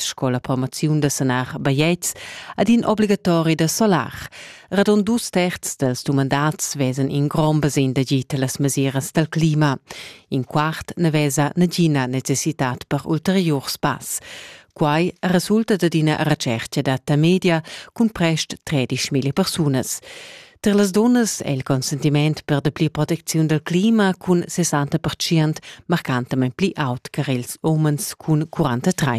sco la formaziun da sanar bajetgs ad in obligatori da solar. Radon dus terz dels dumandats vesen in grom basin da gita las mesiras dal clima. In quart ne vesa nagina necessitat per ulterior spass. Quai resulta da d'ina recerca data media cun prest 13.000 persunas. Per las dunnas è il consentiment per dapli protecziun dal clima cun 60 marcantamain pli aut che ils umens cun 43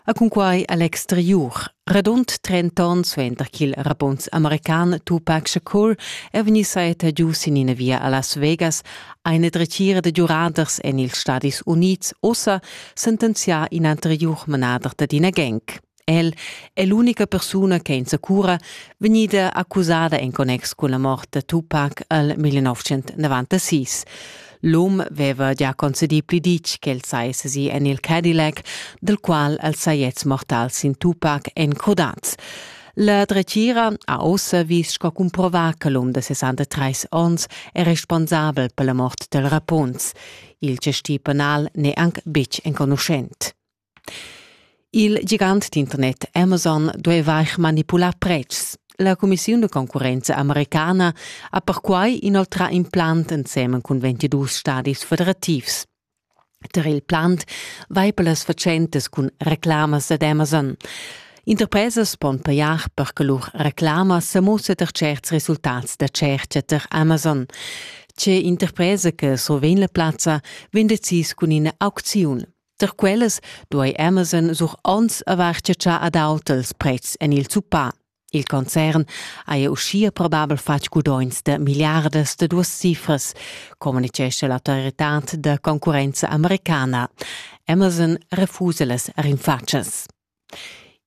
A cunquai a l'exteriur. Radund 30 onns suenter ch'il rapunz american Tupac Shakur è vegnì saetta giu sin ina via a Las Vegas, ha ina dretgira da giuraders en ils Stadis Unids ussa sentenzià in anteriur manader d'ina gang. El è l'unica persuna che insacura vegnida accusada en connex cun la mort da Tupac al 1996. L'um aveva già concedì pli ditg ch'el saja sesì en il Cadillac, dal qual el sajets mortals sin Tupac en Codaz. La dretgira ha ossa vis sco cumprovà che l'um da 63 onns è responsabel per la mort del Rapunz. Il gestì penal n'è anc betg enconuschent. Il gigant d'internet Amazon dueva eir manipular pretschs. La cumissiun da concurrenza americana ha perquai inoltrà in plant ensemen cun 22 stadis federativs. Tar il plant vai per las fatschentas cun reclamas ad Amazon. Interpresas pon pajar per che lur reclama sa mussa tar certs resultats da tschertga tar Amazon. Tge interpresa che survegn la plazza vegn decis cun ina aucziun. Tar quellas duai Amazon sur onns avair chatschà ad auters pretschs en il zuppà. Il concern haja uschia probabel fatg gudogns da milliardas da duas cifras, communitgescha l'autoritad da concurrenza americana. Amazon refusa las rinfatschas.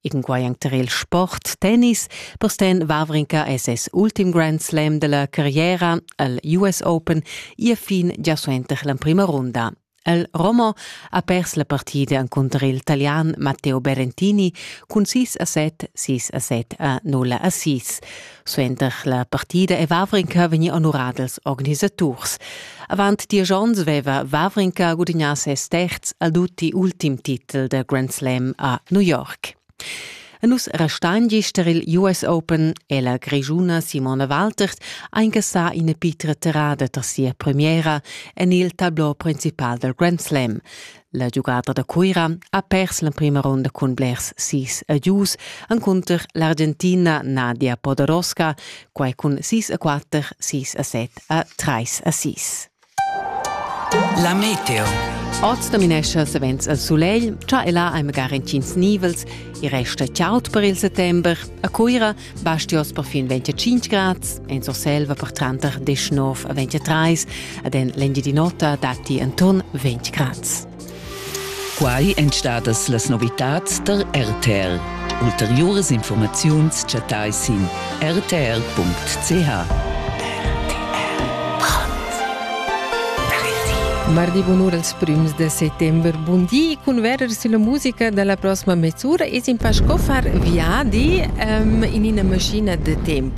Egenquei anc tar il sport, tennis. Postin Wawrinka è ses ultim Grand Slam della carriera al US Open ia fin gia suenter l'emprima runda. El Romo ha pers la partida encunter il Italian Matteo Berentini cun 6 a 7, 6 a 7 a 0 a 6. Suenter la partida e Vavrinka vegni honorà dals organisaturs. Avant diesch onns veva Vavrinka gudignà ses terz ad tutti ultim titel da Grand Slam a New York. E nus restan gist tar il US Open e la grischuna Simona Waltert ha incassà ina pitra terrada tar sia premiera en il tablò principal dal Grand Slam. La giugada da Cuira ha pers l'emprima ronda cun blers sis a gius encunter l'Argentina Nadia Podoroska, quai cun sis a quatter, sis a set a trais a sis. La meteo. Oz dominescha savens il sulegl, cha e là hai magari entgins nivels, i resta chaud per il settember. A Cuira Basti oz perfin 25 grads, en Surselva per tranter 19 a 23 ed en l'Engiadin'Ota datti enturn 20 grads. Quai èn stadas las novitads der RTR. Ulteriuras informaziuns chattai sin rtr.ch. Mardi bunur als prims de settembre. Bun di cun verer sulla musica dalla prossima mezz'ura es in pa sco far viadi um, in ina maschina de temp.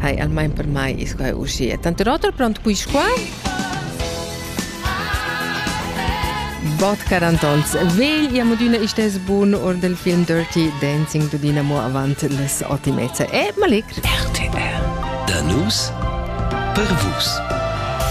Hai, almain per mai is quai uscia. Tanto rotor pront quis qua? Bot Carantons. Vegl iam adüna istes bun or del film Dirty Dancing du Dynamo avant les ottimezza. E malegr. RTR. Da nus per vus.